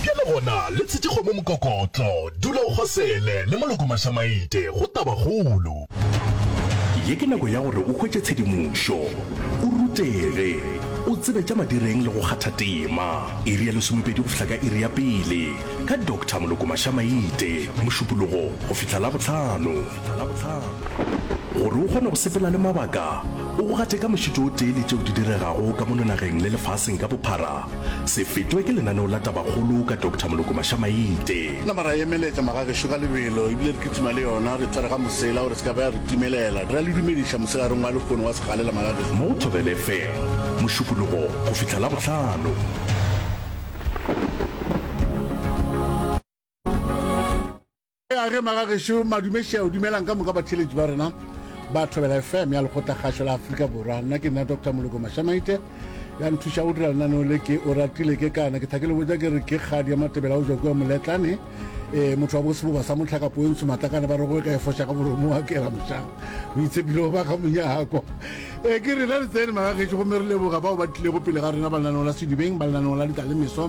Bjale gona, le tshetše kgomo mokokotlo. Dula o kgosele, le moloko mašamaite, go taba kgolo. Ye ke nako ya gore o hwetše tshedimošo, o rutege, o tsebe tša madireng le go kgatha tema. Iri ya lesomepedi go fihla ka iri ya pele, ka Doctor Moloko Mašamaite, Mošupologo go fihla Labohlano. Labohlano. Gore o kgone go sepela le mabaka, o go gate ka mošito o tee le tšeo di diregago ka mono nageng le lefaseng ka bophara, se fetwe ke lenaneo la Tabakgolo ka Doctor Moloko Mashamaite. Nama ra emeletša magagešo ka lebelo ebile re kitima le yona, re tshwarega mosela gore se ka be ya re timelela. Ra le dumediša moselarong wa lekgono wa segalela magagešo. Mo Thobel FM, Mošupologo go fihla Labohlano. A ge magagešo madume šeo dumelang ka moka batheletši ba rena ba thobela fm ya lekgotla kgašo la aforika borwa nna ke nna dr moloko mašamaite ya nthuša go dira lenaneo le ke o ratile ke kana ke thakele botsa ke re ke kgadi ya matebela o jwa kua moletlane um motho wa boseboba sa motlhakapo yo ntsho matlakane ba rego e ka e foša ka moromo wa kela mošang o itshepile go ba ga monyako e ke rena re tsene magagešo gomme re leboga bao ba tlilego pele ga rena ba lenaneo la sedibeng ba lenaneo la ditalemeswa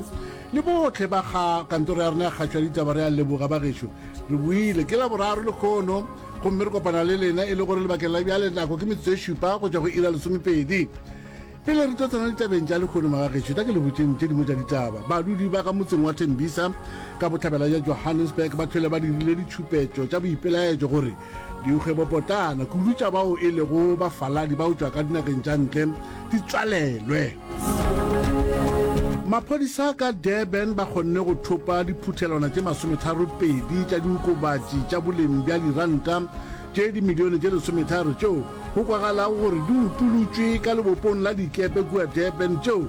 Le bohle ba ga kantoro ya rena ya kgašo ya ditaba re a leboga, bagešo. Re boile ke Laboraro lekhono, gomme re kopana le lena e le gore lebakeng la bjale nako ke metsotso e šupa go tšwa go iri ya lesomepedi. Pele re tlo tsena ditabeng tša lekhono, magagešo, tla ke le botšeng tše dingwe tša ditaba. Badudi ba ka motseng wa Tembisa ka bohlabela bja Johannesburg ba hlwele ba dirile ditšhupetšo tša boipelaetšo gore Dikgwebopotana kudu tša bao e lego bafaladi ba utšwa ka dinageng tša ntle di tswalelwe. Maphodisa ka Durban ba kgonne go thopa diphuthelwana tše masometharo pedi tša diokobatši tša boleng bja diranta tše dimilione tše lesometharo tšeo go kwagalago gore di utolotšwe ka lebopong la dikepe kua Durban tšeo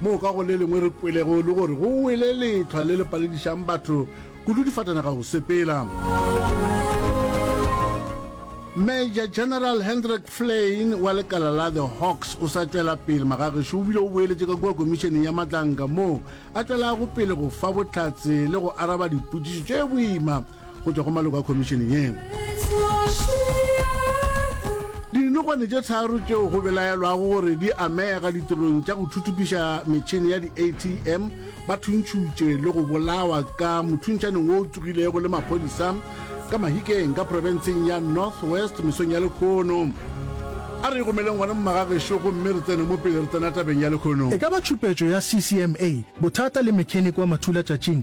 moo ka go le lengwe re kwelego e le gore go wele letlhwa le le paledišang batho kudu difatanaga go sepela. Major General Hendrik Flein wa lekala la The Hawks o sa tšwela pele magagešo o bile o boeletše ka kua komišeneng ya matlanka moo a tšwelago pele go fa bohlatse le go araba dipotšišo tše boima go tšwa go maloko a khomišene yeo. Dinokwane tše tharo tšeo go belaelwago gore di amega ditirong tša go thuthupiša metšhene ya di-atm ba thuntšhutše le go bolawa ka mothuntšhaneng wo o tsogilego le maphodisa ka mahikeng ka profenseng ya north west mesong ya lekgono a re gomeleng gona mmagagešo gomme re tsene mo pele re tsena tabeng ya lekgono e ka ba tšhupetšo ya ccma bothata le mechanic wa mathulatšatšing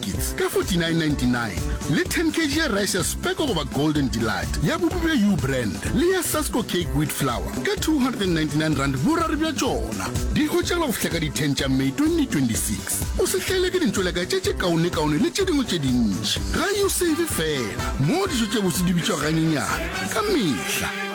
kits ka 49.99 le 10 kg ya rice ya speko goba golden delight ya bupi bja u brand le ya sasco cake wheat flour ka 299 rand boraro bja tšona di hwetšagala go fihla ka di 10 tša may 2026 o se hlaele ke dintšweleka tše tše kaonekaone le tše dingwe tše dintši ga usave fela moo dijo tše botse di bitšwa ganyenyane ka mehla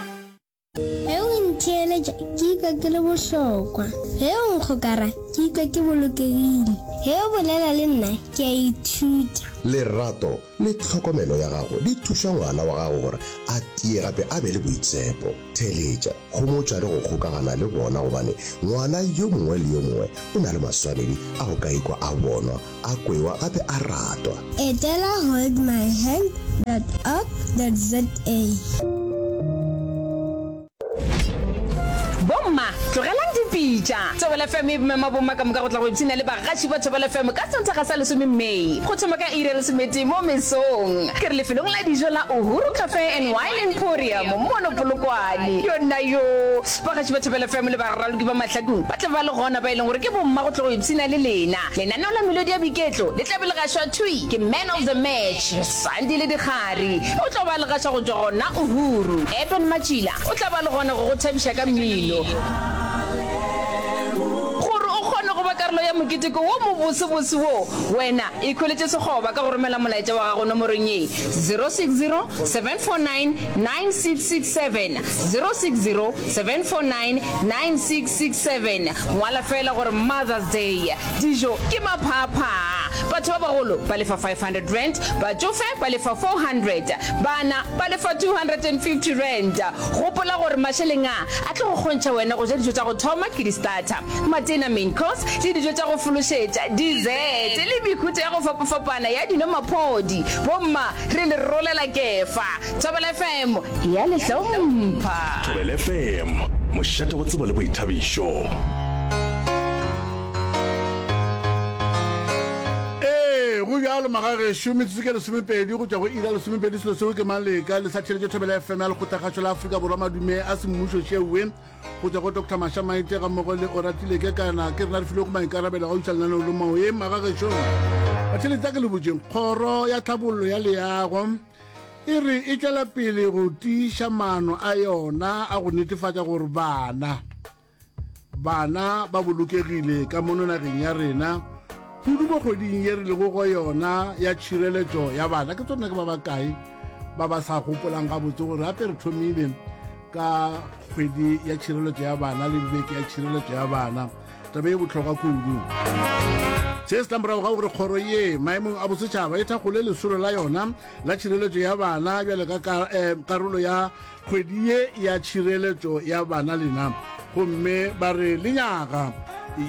Ge o ntheeletša, ke ikwa ke le bohlokwa. Ge o nkgokara, ke ikwa ke bolokegile. Ge o bolela le nna, ke a ithuta. Lerato le tlhokomelo ya gago di thuša ngwana wa gago gore a tie gape a be le boitshepo. Theeletša, homotša le go kgokagana le bona gobane ngwana yo mongwe le yo mongwe o na le maswanedi a go ka ikwa a bonwa A kwewa a be a ratwa. Etela holdmyhand.org.za. Bomma, tlogelang dipitša. Thobela FM e mema bomma ka moka go tla go ipshina le bagaši ba Thobela FM ka Sontaga sa lesome May, go thoma ka iri ya lesometee mo mesong. Ke re lefelong la dijo la Uhuru Cafe and Wine Emporium mono Polokwane. Yonnayoo! Bagaši ba Thobela FM le baraloki ba mahlakong ba tla ba le gona, ba e leng gore ke bomma go tla go ipshina le lena. Lenaneo la melodi ya boiketlo le tla be le gašwa thwi ke Man of the Match, Sandi le Dikgari. O tla ba a le gaša go tšwa gona Uhuru. Eben Matšila o tla ba a le gona go go thabiša ka mmino. Gore o kgone go ba karolo ya moketeko wo mobosebose wo, wena ikhweletše sekgoba ka go romela molaetša wa gago nomorong ye, 0607499667, 0607499667. 67, ngwala feela gore Mother's Day, dijo ke maphaaphaa, batho ba bagolo ba lefa R500, batšofe ba lefa R400, bana ba lefa R250. Gopola gore mašeleng a a tlo go kgontšha wena go ja dijo tša go thoma ke di-starter, matena, main course, le dijo tša go fološetša, dessert, le mehuta ya go fapafapana ya dino-maphodi. Bomma re le rolela kefa. Thobela FM ya le hlompha. Thobela FM, mošate wa tsebo le boithabišo. go bjalo magagešo metsotso ke lesomepedi go tšwa go ira lesomepedi selo seo ke maleka le sa theletše thobela fm ya lekgothakgašo la aforika borwa madume a semmušo šeoe go tswa go dr masha maite ga mmogo le oratile ke kana ke rena re filego maikarabelo ga usa lenaneo le maoe magagešo batheletsa ke le botšeng kgoro ya tlhabollo ya leago e re e tšwela pele go tiiša maano a yona a go netefatša gore bana bana ba bolokegile ka mono nageng ya rena kudu mo kgweding ye re lego go yona ya tšhireletšo ya bana ke tsone ke ba bakae ba ba sa gopolang gabotse gore gape re thomile ka kgwedi ya tšhireletšo ya bana le beke ya tšhireletšo ya bana tabe e botlhokwa kudu se se tlamorago ga gore kgoro ye maemong a bosetšhaba e thakgole lesolo la yona la tšhireletšo ya bana bjale ka eh, karolo ya kgwedi ye ya tšhireletšo ya bana lena gomme ba re lenyaga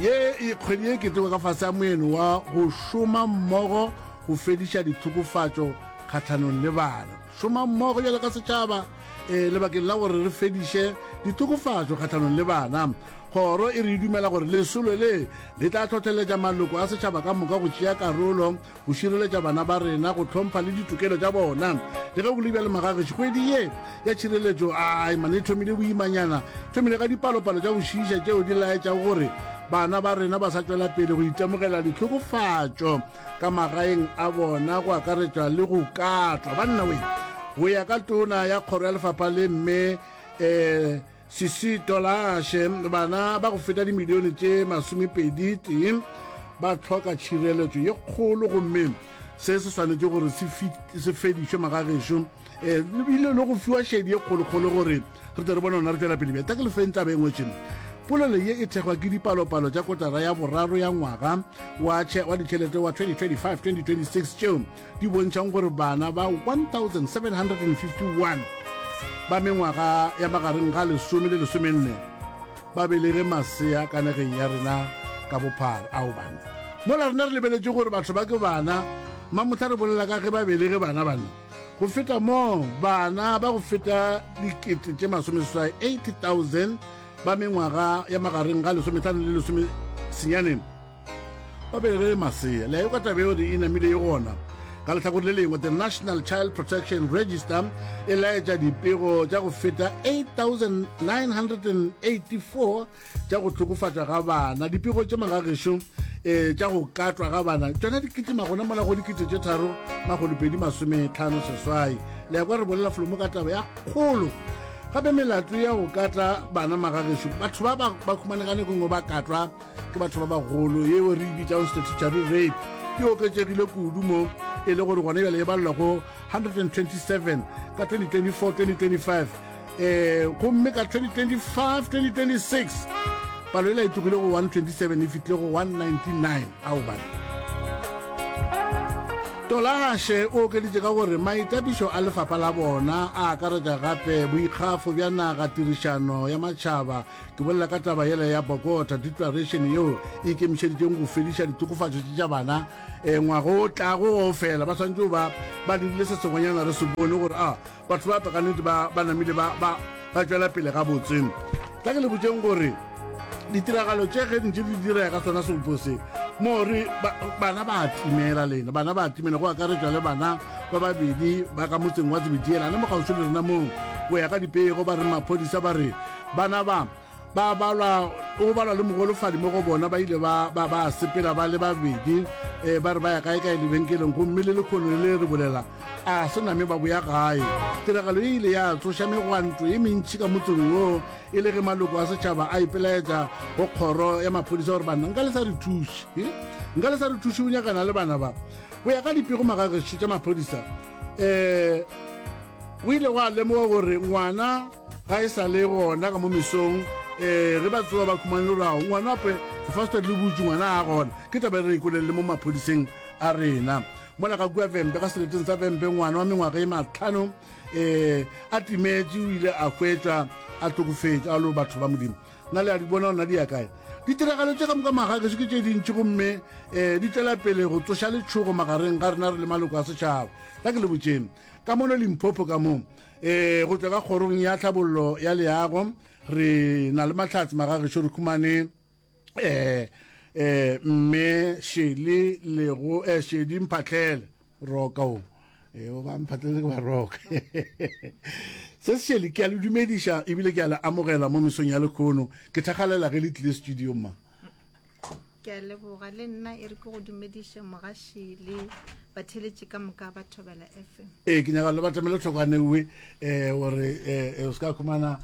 ye e kgwedi ye keteko ka fase ya moeno wa go šoma mmogo go fediša dithokofatšo kgatlhanong le bana šoma mmogo bjale ka setšhaba um lebakeng la gore re fediše dithokofatšo kgatlhanong le bana Kgoro e re e dumela gore lesolo le le tla hlohleletša maloko a setšhaba ka moka go tšea karolo go šireletša bana ba rena go hlompha le ditokelo tša bona. Le ge go le bjalo magagešo kgwedi ye ya tšhireletšo a imane e thomile boimanyana thomile ga dipalopalo tša go šiiša tšeo di laetšago gore bana ba rena ba sa tšwela pele go itemogela ditlhokofatšo ka magaeng a bona go akaretša le go katlwa. Banna we go ya ka tona ya kgoro ya lefapha le mme um Sisi Tolashe, Bana ba go feta dimilione tše masomepedi tee ba hloka tšhireletšo ye kgolo gomme se se swanetše gore se fedišwe magagešo um eh, lebile le go fiwa šedi ye kgolokgolo gore re tle re bona gona re tšwela pele bja ta ke lefeng taba engwe tšeno polelo ye e thekgwa ke dipalopalo tša kotara ya boraro ya ngwaga wa ditšhelete wa 2025-2026 tšeo di bontšhang gore bana ba 1751 ba mengwaga ya magareng ga lesome le lesomenne ba belege masea ka nageng ya rena ka bophara ao bana mola rena re lebeletše gore batho ba ke bana mamotlha re bolela ka ge ba belege bana bana go feta moo bana ba go feta dikete tše masomeseswai 80000 ba mengwaga ya magareng ga lesometlhano le lesomesenyaneng ba be re masea le ka tabe yeo e namile e gona ka lehlakore le lengwe the national child protection register e laetša dipego tša go feta 8984 tša go hlokofatšwa ga bana dipego tše magagešo um eh, tša go katwa ga bana tšona di kitima gona mola go dikete tše tharo magolopedi masometlhano seswai le ya kwa re bolela folomo ka taba ya kgolo gape melato ya go katla bana magagešo batho ba ba khumanegane kongwe ba katwa ke batho ba bagolo yeo re bitsang statutory rape ke oketsegile kudu mo e le gore gone bjale e balelwa go 127 ka 2024-2025 um eh, gomme ka 2025-2026 palo ela e tlogile go 127 e fitlhile go 199 ao bane tolagashe o okeditse ka gore maitapišo a lefapha la bona a akaretša gape boikgafo bja naga tirišano ya matšhaba Ke bolela ka taba yela ya Bogota Declaration yeo e ikemišeditšeng go fediša ditokofatšo tše tša bana e ngwago o tlago go fela ba swanetše ba ba dirile se sengwenyana re se bone gore a batho ba ka nnete ba ba namile ba ba ba tšwela pele ga botse ka ke le botseng gore ditiragalo tše ge ntše di direga ka tsona sebopo se mo re bana ba timela lena bana ba timela go akaretšwa le bana ba babedi ba ka motseng wa tsebediela le mogauswi le rena moo go ya ka dipego ba re maphodisa ba re Bana ba ba balwa go balwa le mogolofadi mo go bona ba ile ba ba ba sepela ba le babedi e ba re ba ya kae kae lebenkeleng gomme le lekgono le re bolela a se name ba boya gae tiragalo e ile ya tsoša megwanto e mentši ka motseng wo e le ge maloko a setšhaba a ipelaetsa go kgoro ya maphodisa gore banna nka le sa re thuše nka le sa re thuše o nyakana le bana ba go ya ka dipego magagešo tša maphodisa um o ile wa lemoga gore ngwana ga e sa le gona ka mo mesong um re ba tsewa ba khumane rao ngwana ape fasted le butse ngwana a gona ke taba e re ikolelele mo maphodiseng a rena mola ka kua vempe ka seleteng sa vempe ngwana wa mengwaga e matlhano um a timetse o ile a hwetsa a tlokofetse a lo batho ba modimo na le a di bona gona di ya kae ditiragalo tse ka moka maga ke se ke tse dintšhi gomme um di tswela pele go tsoša letshogo magareng ga rena re le maloko a setšhaba ka ke le botseng ka mono limphopho ka moo E, go tšwa ka kgorong ya tlhabollo ya leago re na le mahlatse magagešo re khumane e, e, mme šele lego e, šedi mphatlele roka o e, o ba mphatlele ke ba roka se se šele ke a le dumediša ebile ke a le amogela mo mesong ya lekhono ke thakgalela ge le tlile studio ma ke a leboga le nna e re ke go dumediše mogaši le batheletše ka moka ba thobela fm ee ke nyaka le batamele tlhokwane uwe um gore um o se ka khumana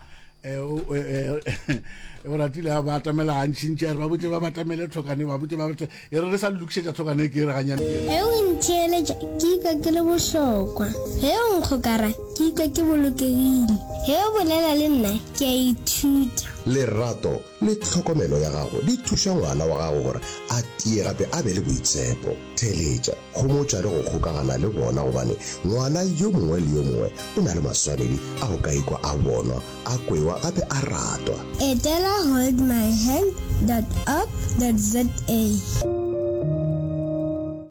o ratile ba atamela gantšintši a re ba botse ba batamele tlhokane ba botse ba botse e re re sa lokišetša tlhokane ke e re ganyane ge o ntheeletša ke ikwa ke le bohlokwa ge o nkgokara ke ikwa ke bolokegile ge o bolela le nna ke a ithuta lerato le tlhokomelo ya gago di thuša ngwana wa gago gore a tie gape a be le boitshepo. Theeletša, homotša le go kgokagana le bona gobane ngwana yo mongwe le yo mongwe o na le maswanedi a go ka ikwa a bonwa, a kwewa gape a ratwa. Etela holdmyhand dot org dot za.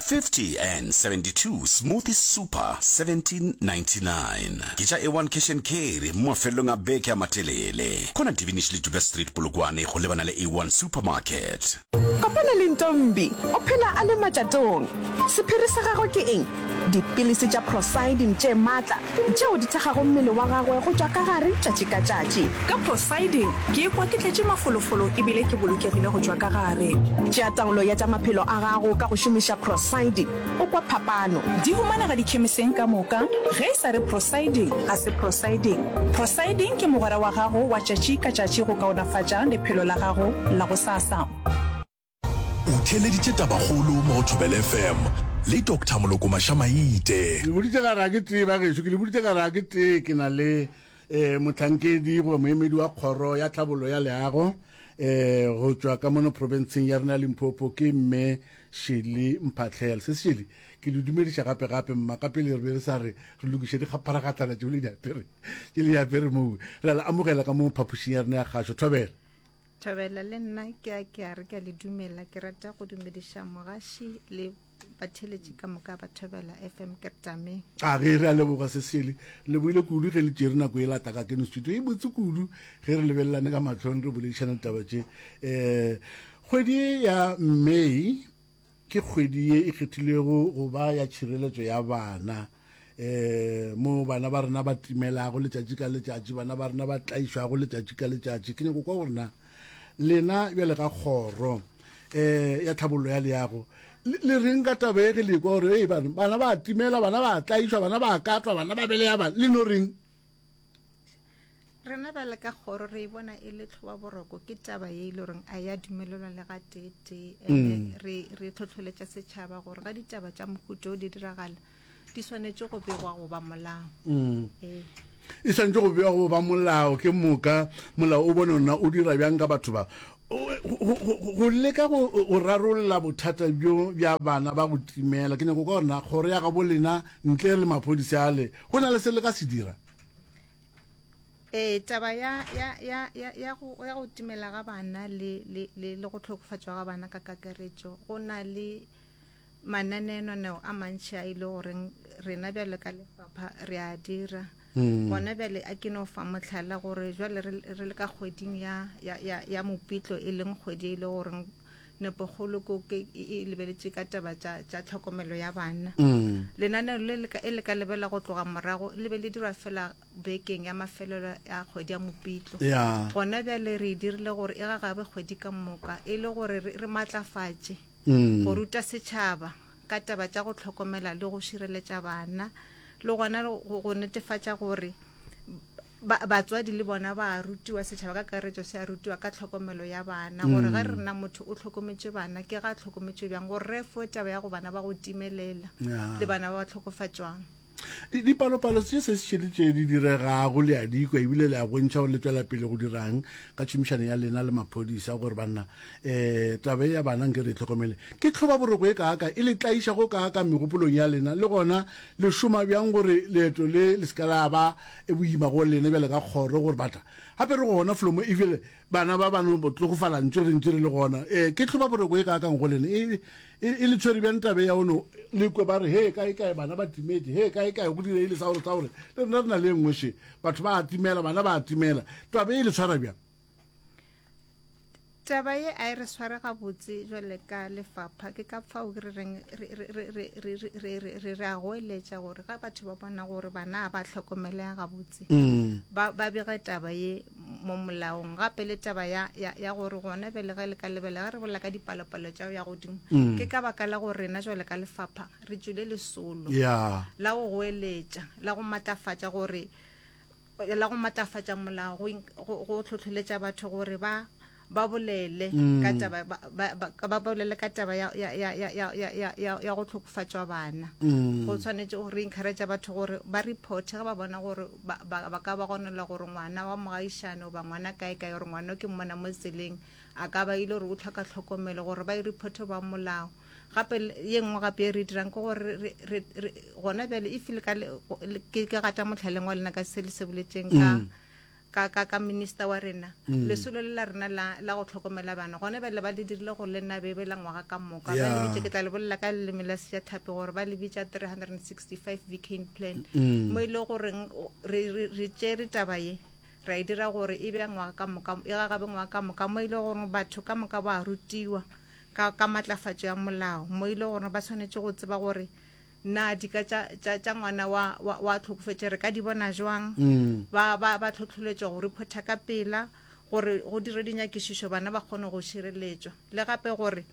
50 and 72 Smoothies Super 1799 Ke tša A1 Cash and Carry mo mafelelong a beke a matelele. Kona Divinish le Duka Street Polokwane go lebana le A1 Supermarket. Kopana le Ntombi, o phela a le matšatong. Sephiri sa gagwe ke eng? Dipilisi tša prosidine tše matla tšeo di thekgago mmele wa gagwe go tšwa ka gare tšatši ka tšatši. Ka Poseidon, ke ikwa ke tletše mafolofolo e bile ke bolokegile go tšwa ka gare. Tšea taolo ya tša maphelo a gago ka go šomiša Poseidon, o kwa phapano. Di humanega dikhemiseng ka moka. Ge e sa re Poseidon, ga se Poseidon. Poseidon ke mogwera wa gago wa tšatši ka tšatši go kaonafatša lephelo la gago la gosasa. O theeleditše tabakgolo mo go Thobela FM le Doctor Moloko Mašamaite. Ke le boditše ka re a ke tee ba gešo, ke le boditše ka re a ke tee ke na le um mohlankedi goba moemedi wa kgoro ya tlhabollo ya leago um go tšwa ka mono profenseng ya rena ya Limpopo ke mme Shirley Mphahlele. Se Shirley, ke le dumediša gape gape mma ka pele re be re sa re re lokiše dikgapharagatlana tšeo le di apere tše le di apere moo. Re a le amogela ka mo phapošing ya rena ya kgašo. Thobela. Thabela le nna ke a ke a re ke a le dumela ke rata go dumediša mogaši le batheletši ka moka ba Thobela FM ke tame. A ge re a leboga Sesele. Le boile kudu ge le tšere nako e lata ka keno studio e botse kudu ge re lebelelane ka mahlong re boledišana ditaba tše. Um kgwedi ya May Ke kgwedi ye e kgethilwego go ba ya tšhireletšo ya bana, moo bana ba rena ba timelago letšatši ka letšatši, bana ba rena ba tlaišwago letšatši ka letšatši. Ke nyako kwa gore na lena bjale ka Kgoro ya Tlhabollo ya Leago le reng ka taba ye ge le ekwa gore bana ba timela, bana ba tlaišwa, bana ba katwa, bana ba beleya bana, le no reng? Rena bjale ka kgoro re e bona e le tlhoba boroko ke taba ye e le goreng a ya dumelelwa le ga tete ene mm. re re tlhotlholetša setšhaba gore ga ditaba tša mohuto o di diragala di swanetše go begwa goba molao mm. ee. e swanetše go bewa go ba molao ke moka molao o bone ona o dira bjang ka batho ba Go leka go rarolla bothata bjo bja bana ba go timela, ke nyako kwa gore na kgoro ya gabo lena ntle le maphodisa ale go na le se le ka se dira? Ee, taba ya, ya, ya, ya, ya, go, ya go timela ga bana le, le, le, le go tlhokofatšwa ga bana ka kakaretšo go na le Mananeonaneo a mantši a e le goreng rena bjale ka lefapha re a dira hmm. gona bjale a ke no fa motlhala gore jwale re le ka kgweding ya, ya, ya, ya mopitlo e leng kgwedi e le goreng nepogolo ko ke e lebeletse ka taba tša tša tlhokomelo ya bana mm. lenaneo le le e le ka lebela go tloga morago le be le dirwa fela bekeng ya mafelelo ya kgwedi ya mopitlo gona bjale re e dirile gore e gagabe kgwedi ka moka e le gore re matlafatše go ruta setšhaba ka taba tša go tlhokomela le go šireletša bana le gona go netefatša gore batswadi le bona ba rutiwa setšhaba ka karetso se a rutiwa ka tlhokomelo ya bana mm. gore ge re rena motho o tlhokometše bana ke ga tlhokometše bjang gore re fo taba ya go bana ba go timelela le bana ba ba tlhokofatšwang Dipalopalo tše se šele tše di diregago le a dikwa ebile le a bontšha gore le tswela pele go dirang ka tšhomišano ya lena le maphodisa gore banna um taba e ya bana nke re e tlhokomele ke tlhoba boroko e kaaka e le tlaiša go kaaka megopolong ya lena le gona le šoma bjang gore leeto le le seka la ba e boima go lena bjale ka kgoro gore batla gape re gona flomo ebile bana ba bano botlogofala ntse re ntse re le gona um ke tlhoba boroko e kaakang go lena e E, e le tshwere bjang tabe ya ono le kwe ba re he kae kae bana ba timetse he kae kae go direile sa gore sa gore le rena re na le nngwe she batho ba atimela bana ba atimela tabe e le tshwara bjang taba ye a e re sware gabotse jwale ka lefapha ke ka fao re reng re re a goeletša gore ga batho ba bona gore bana ba tlhokomelega gabotse mm. ba bege taba ye mo molaong gape le taba ya, ya, ya gore gona bjale ge le ka lebela ge re bolela ka dipalopalo tša ya godimo mm. ke ka baka la gore rena jwale ka lefapha re tswile lesolo yeah. la go goeletša la go matlafatša gore la go matlafatša molao go tlhotlholetša batho gore ba ba bolele mm. ka taba ba, ba, ba, ba bolele ka taba ya ya ya ya ya ya ya ya go tlhokofatšwa bana mm. go tshwanetse go re encourage batho gore ba report ga ba bona gore ba ba ka ba gonela gore ngwana wa mogaišano ba ngwana kae kae gore ngwana ke mmona mo tseleng a ka ba ile gore o tlhoka tlhokomelo gore ba e report ba molao gape ye nngwe gape e re dirang ke gore gona bjale e file ke gata motlhaleng wa lena ka se le se boletseng ka mm. ka, ka, ka minister wa rena, lesolo le la rena la, la go hlokomela bana, gone bjale ba le dirile gore le nna bebe la ngwaga ka moka. Ba le Yeah. bitše, ke tla le bolela ka leleme la Sejathapi, gore ba le bitša 365 Vicaine Plan, mo e le goreng o- re, re, re tšere taba ye, ra e dira gore e be ya ngwaga ka moka, e gagabe ngwaga ka moka, mo e le gore batho ka moka ba rutiwa ka, ka matlafatšo ya molao, mo e le gore ba swanetše go tseba gore Na dika tša, tša, tša ngwana wa, wa, wa tlhokofetše re ka di bona jwang? Ba, ba, ba tlhotlholetšwa go riphotha ka pela gore go dire dinyakišišo bana ba kgone go šireletšwa, le gape gore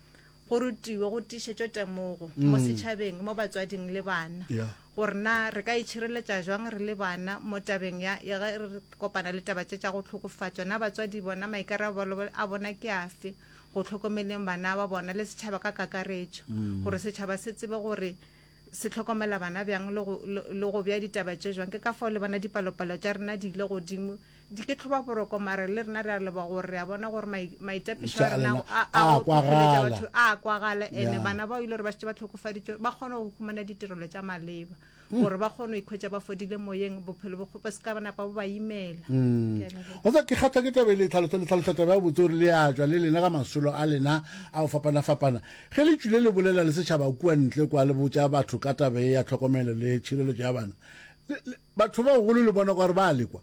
go rutiwe go tiišetšwe temogo mo setšhabeng, mo batswading le bana, Yeah. gore na re ka itšhireletša jwang re le bana mo tabeng ya, ya ge re kopana le taba tše tša go hlokofatšwa. Na batswadi bona maikarabelo a bona ke afe? go hlokomeleng bana ba bona le setšhaba ka kakaretšo mm. gore setšhaba se tsebe gore se tlhokomela bana bjang le go bja ditaba tše jwang ke ka fao le bona dipalopalo tša rena di ile godimo di ke tlhoba boroko mare le rena re a leba gore re a bona gore maitapišo a rena a kwagala ene bana bao ile gore ba šetse ba tlhokofaditswe ba kgone go humana ditirelo tša maleba gore ba kgone go ikhwetša ba fodile moyeng bophelo bo kgope se ka ba napa bo ba imela mm. o tsa ke kgatlha ke tabe le tlhalosa le tlhalosa tabe ya botse gore le ya tšwa le lena ka masolo a lena a go fapana fapana ge le tšwile le bolela le setšhaba kua ntle kwa le botša batho ka tabe ya tlhokomelo le tšhireletso ya bana batho ba golo le bona gore ba lekwa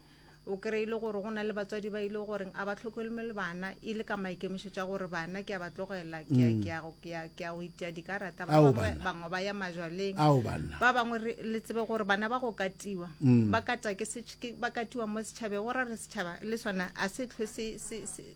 O kry-e le gore go na le batswadi ba ile goreng a ba tlhokomelwe bana e le ka maikemišetšo a gore bana ke a ba tlogelela ke a- ke a go- ke a- ke a go itia dikarata ba Ao, bangwe banna. bangwe ba ya majwaleng Ao, banna. ba bangwe re- le tsebe gore bana ba go katiwa ba kata ke setš- ke- ba katiwa mo setšhabeng go ra re setšhaba le sona a se tlhwe se- se- se-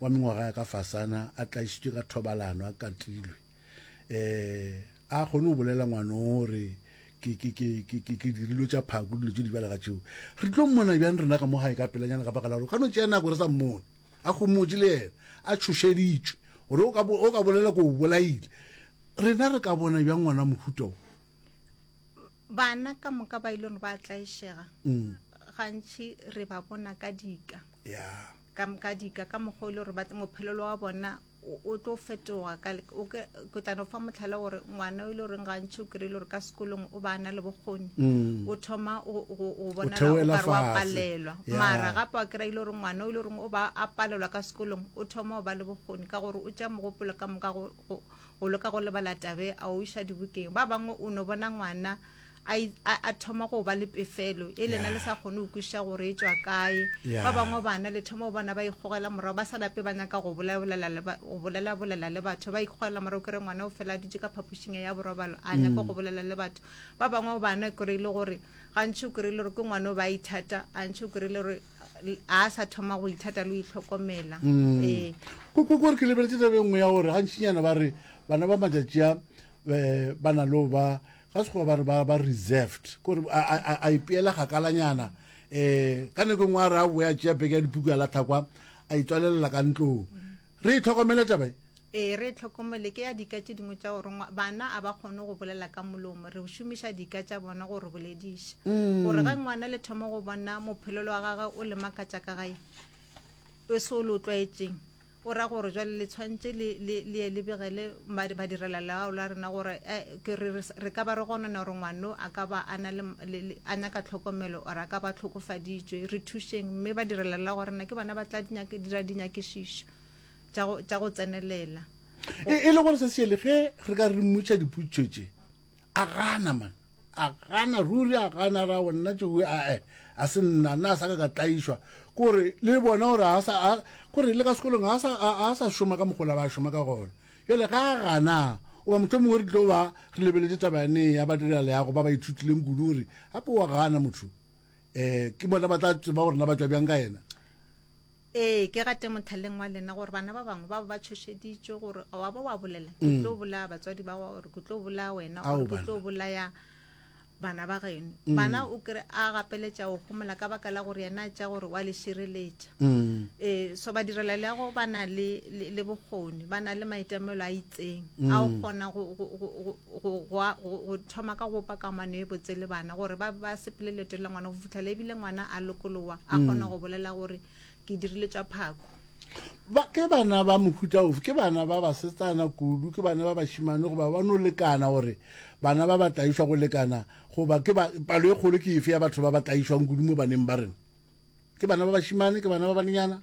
wa mengwaga ya ka fasana a tlaišitšwe ka thobalano a katilwe e a kgone go bolela ngwanong gore ke ke ke ke ke ke dirilo tša phako dilo tše di bjalega tšeo re tlo mmona bjang rena ka mo gae ka pelanyana ka baka la gore ka no tšea nako re sa mmone a gomotše le yena a tšhošeditšwe gore o ka bolela ko o bolaile rena re ka bona bjang ngwana mohuta o Bana ka moka ba ilone ba tlaišega, gantši re ba bona ka dika, ka ka dika ka mokgwa o ile gore ba mophelelo wa bona o- o tlo fetoga ka le- o ke ke tla no fa motlhala gore ngwana o ile goreng gantši o kry-ile gore ka sekolong o ba na le bokgoni o thoma go- go go bonala o theoela kare wa fatshe. palelwa Yeah. mara gape wa kry-a ile gore ngwana o ile goreng o ba a palelwa ka sekolong o thoma go ba le bokgoni ka gore o tša mogopolo ka moka go- o leka go lebala tabe a o iša dibokeng ba bangwe o no bona ngwana a thoma go ba le pefelo e lena le sa kgone go kwiša gore e tswa kae ba bangwe bana le thoma go bona ba ikgogela morago ba sa lape ba nyaka go bolelabolela le batho ba ikgogela morago kere ngwana o fela a dutse ka phapošing ya borobalo a nyaka go mm. bolela le batho ba bangwe bana kore e le gore gantši o kry-ile gore ke ngwana o ba ithata gantši o kry-ile gore a sa thoma go ithata le itlhokomela mm. ee. kore ke lebeletse tabe nngwe ya gore gantšinyana ba re bana ba matšatši a um ba na leo ba ga sekgoba ba re ba ba reserved kore a ipeela kgakalanyana um ka nako e nngwe a re a boya tšea beke ya dipuku ya latlhakwa a itswalelela ka ntlong Re e hlokomele taba ye. Ee, re e hlokomele. Ke ya dika tše dingwe tša go rongwa. Bana a ba kgone go bolela ka molomo. Re šomiša dika tša bona go re bolediša. Gore ge ngwana le thoma go bona mophelelo wa gage o le makatša ka gae, e se o le o tlwaetšeng, o ra gore jwale le tshwantše le ye le begele badirelaleago la rena gore re ka ba re gonona gore ngwano a ka ba a na le a nyaka tlhokomelo or a ka ba tlhokofaditšwe re thušeng mme badirelaleago rena ke bona ba tla dira dinyakišišo tša go tsenelela e le gore se se yele ge re ka re mmotša dipotšo tše a gana man a gana ruri a gana ra go nna tšeo ae a se nna nna a sa ka ka tlaišwa kore le bona gore a sa a kore le ka sekolong a sa a sa šoma ka mogola ba šoma ka gona jale ga a gana o ba motho mongwe re tlo ba re lebeletse taba yane ya badira leago ba ba ithutileng kudu gore gape wa gana motho um ke bona ba tla tseba gore na ba tswa bjang ka yena Ee, ke gate mothaleng wa lena gore bana ba bangwe ba bo ba tshošeditšwe gore a wa ba wa bolela ke mm. tlo bolaya batswadi ba gore ke tlo bolaya wena gore ke tlo bolaya bana ba geno mm. bana o kry a gapeletša o gomola ka baka la gore yena a tša gore wa le šireletša um so ba direla le ya go ba na le bokgoni ba na le maitemelo a itseng a o kgona go, go, go, go thoma ka go bopa kamano e botse le bana gore ba, ba sepele leeto la ngwana go fitlhela ebile ngwana a lokolowa a mm. kgona go bolela gore ke dirile tša phako ba ke bana ba mohuta ofe ke bana ba basetsana kudu ke bana ba bashimane goba ba no lekana gore bana ba ba tlaišwa go lekana goba ke palo e kgolo ke efe ya batho ba ba tlaišwang kudu mo baneng ba rena ke bana ba bashimane ke bana ba banenyana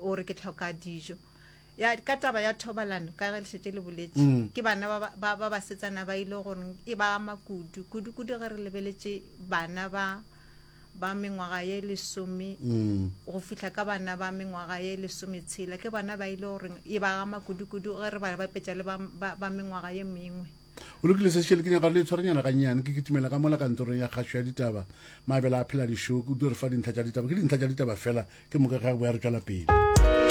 o re ke tlhoka dijo ya ka taba ya thobalano ka ge lešetse le boletse mm. ke bana ba ba basetsana ba ile gore e ba ama kudu kudu kudu ge re lebeletse bana ba ba mengwaga ye lesome mm. go fihla ka bana ba mengwaga ye lesome tshela ke bana ba ile gore e ba ama kudu kudu ge re ba bapetsa le ba mengwaga ye mengwe o lokile se šele ke nyaka le tshwarenyana ga nyane ke kitimela ka mola kantorong ya kgašo ya ditaba mabela a phela dišoku o tlo re fa dintlha tša ditaba ke dintlha tša ditaba fela ke moka ga boya re tšwela pele